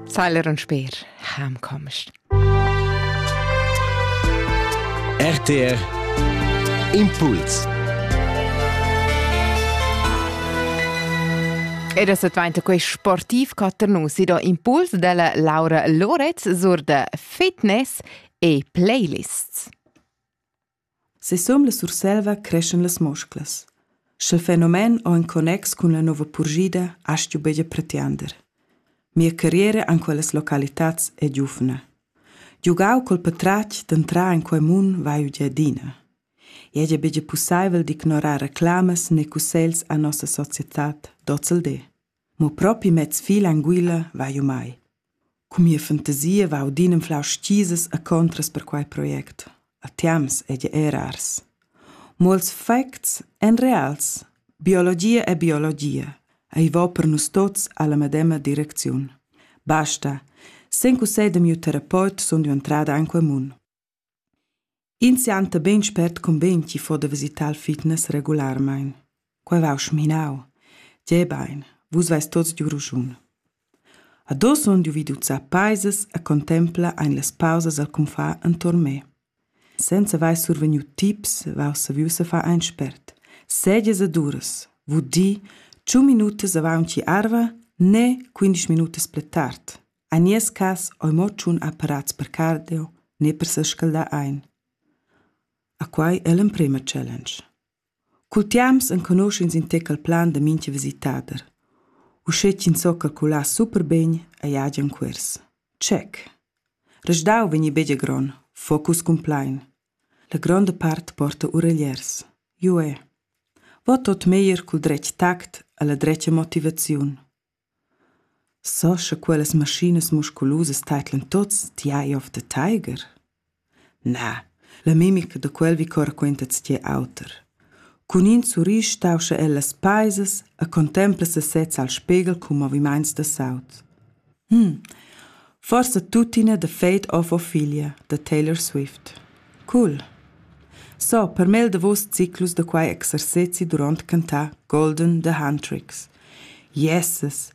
Zeiler und Speer, heimkommst. RTR Impuls Ed es dvainta quei sportiv caternus si do impuls della Laura Loretz sur de fitness e playlists. Sisum la Surselva creschan las musclas. Sch'il fenomen o in connex cun la nova purschida astgu buca pretiander. Mia carriera en quellas localitads è giuvna. Giugau col patratg d'entrar en quei mun vai udia adina. Ei ei buca pusseivel d'ignorar reclamas né cussegls a nossa societad d'ozildi. Mo propi mez fil anguilla va jeu mai. Cun mia fantasia va audin anflau stisas e contras per quei project. A temps ei ei rars. Mo ils facts ein reals. Biologia è biologia. Ei va per nus tuts alla medema direcziun. Basta. Sen cussegl da miu terapeut sun jeu entrada en quei mun. Ins sianta bein spert cumbein ch'i fo da visitar il fitness regularmaing. Quai vau schminau. Tgei bein, vus veis tots giu raschun. Ado sun giu vid uzzar paisas e contempla ein las pausas al cunfà enturn me. Senza vair survegniu tips, vau saviu se far ein spert. Segias e duras, vul dir, tschun minutas avaunci arva, ne quindisch minutas pli tard. En nies cass ei mo tschun apparats per cardio ne per sescaldar ein. A quei ei l'emprema challenge. Cul tiams enconusch'ins in tec il plan da mintga visitader. Uschè ch'ins so calcular super bene ei agen cuors. Check. Resdau vegni begia gron, focus cun plein. La gronda part porta uregliers. Jue. Vot tot meglier cul dretg tact alla dretga motivaziun. So scha quellas maschinas musculusas teidlan tuots, ti hai ov da taiger? Na, la mimica da quel vi coraquenta tschier auter. Cun in surrisch stauscha el las paisas e contempla sesez al spegel cun movimaints da saut. Hm, forsa tuttina da Fate of Ophelia da Taylor Swift. Cool! So per mel davos ciclus da quai exercezi durant cantà Golden The Hand Tricks. Jesses!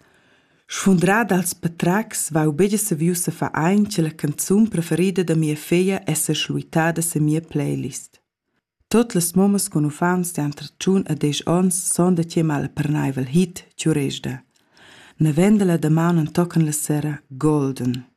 Sfundrà dals patracs vau begia saviu sa far aint la canzun preferida da mia feglia esser schluitada sin mia playlist. Tot las mommas con uffants de entre tschun a desch ons son da tia malpernaivel hit Ciuresda. Na venda la damaun en tocan la sera Golden.